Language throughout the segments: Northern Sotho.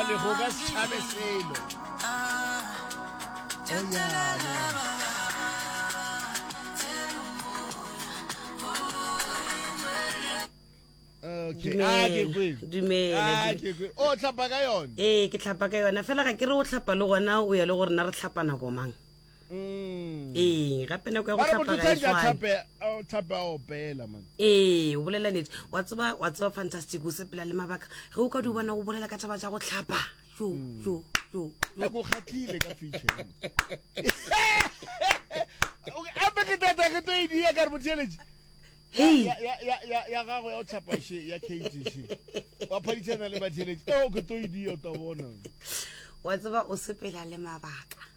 Lehoga Schabe Selo. Okay. Ah, ke kwe. Dumela. Ah, ke kwe. O tlhapa ka yone. ee ke tlhapa ka yona fela ga ke re o tlhapa le gona o ya le gore na re tlhapa nako mang Mm. ee gape nako ya go tlhapa ga e tshwane ee o bolela nete wa tseba wa tseba fantastic o sepela le mabaka ge o ka di bona go bolela ka taba tsa go tlhapa jo mm. jo jo hei ya ya ya ya ya gago ya o tshapa she ya cage she wa phaditshana le batheletši eo ke to e dio ta bona wa tseba o sepela le mabaka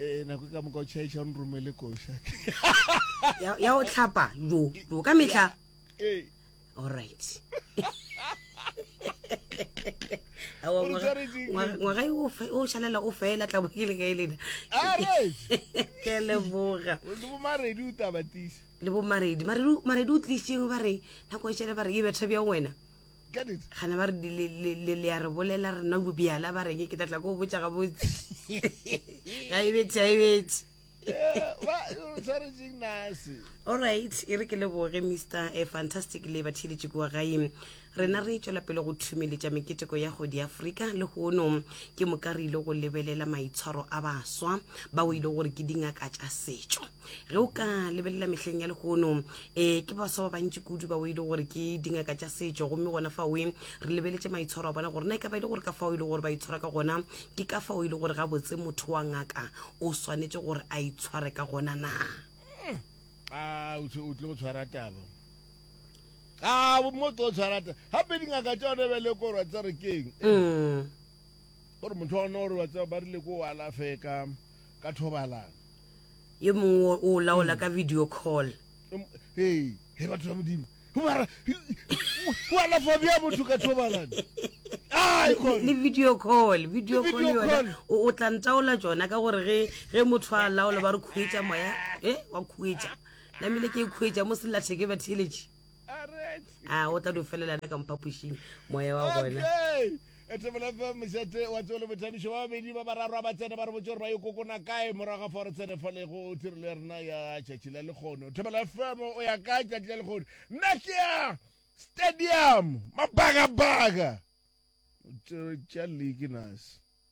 Eh, nako ka moka o chaisa o nromele koša ya ya o tlhapa jo jo ka mehla Eh, alright Awa, O re ngwaga- tshwaretseng? ngwaga- ngwaga yo o fe- o šalela o fela tla bokele ka e lena Ah, right. ke a leboga o le bomaredi o tabatisa le bo maredi maredi maredi o tlisitseng ba re nako e šele ba re e betha bja wena Get it? Gana ba re le, le, le, le a re bolela re nna bobjala ba reng ke tla tla ko botša gabotse. Ga e betse, ga e betse. Yeah, ba, o tshwaretseng nase. Alright, e re ke leboge Mr. eh, Fantastic le batheeletši kua gae. Rena re tšwela pele go thumeletša meketeko ya go di Afrika le hono ke moka re ile go lebelela maitshwaro a baswa bao e le gore ke dingaka tša setšo. ge o ka lebelela mehleng ya legono um ke baswa ba bantši kudu ba o e le gore ke dingaka tša setšo gomme gona fa oe re lebeletše maitshwaro a bona gore na e ka ba e le gore ka fao e le gore ba itshwara ka gona ke ka fao e le gore gabotse motho wa ngaka o swanetše gore a itshware ka gona na a o tle go tshwara taba a mo tlo tshwara taba gape dingaka tša one ba le korwa tsa re keng mm. gore motho wa one gore ba tseba ba rile ko o alafeka ka thobalana yo mongwe o o laola ka video call Hey, he batho ba modimo Ho mara o alafa bja motho ka thobalane ai kore le video call video Ke call video yona call. o o tla ntaola tsona ka gore ge ge motho a laola ba re khuetša moya e wa khuetša namile ke e khuetša mo sellatheke ba theletše a o tla di felelana ka mphapošing moya wa gona etebolefm mošate wa tseo le bothabišo ba babedi ba bararwa ba tsene ba re botse gore ba yo kokona kae morago ga fa gore tsene fa lego tirelo ya rena ya tšatši la lekgono tebolefm o ya kae tšatši la lekgono nna ke ya stadium mabagabaga tša league nase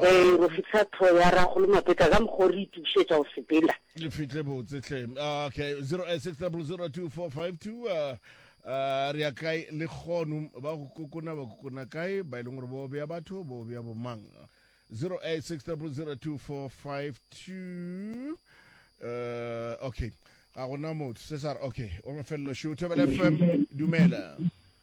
Ge go fihla tho ya rago le mapeta ka mokgwa o re itukišetša go sepela. Le fihle botse hle. Ah, okay, 086002452 uh, uh, re ya kae le kgono ba go kokona ba kokona kae ba e leng gore bo bea batho bo bea bomang 086002452 uh, okay ga gona motho se sa re okay o mafelelo show thobela fm dumela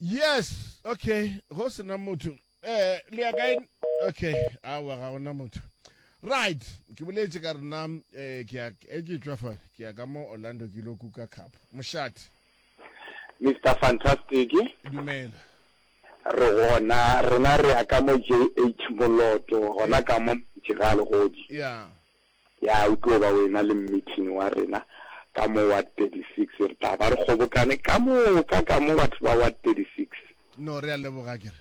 Yes, okay, go se na motho. Eh, le ya kae? Okay, awa ga gona motho. Right, ke boletse ka rena eh ke ya e ke tswa fa ke ya ka mo Orlando ke lo kuka cup. Moshati, Mr. Fantastic, dumela. re gona rena re ya ka mo JH Moloto, gona ka mo Montši ga Legodi. Yeah. Ya, o tlo ba wena le mmithini wa rena ka mo Ward 36. Re tla ba re kgobokane ka moka ka mo, batho ba Ward 36. No, re a leboga, ke re.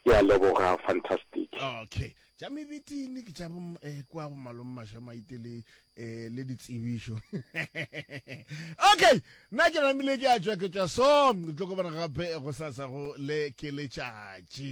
Ke a leboga, fantastic. Okay. Tša mebithini ke tša bo, eh, kua go Malome Mašamaite le, eh, le ditsebišo. Okay! Nna ke namile ke a tšwa, ke tšwa so, ke tlo kobana gape gosasa go le ke letšatši.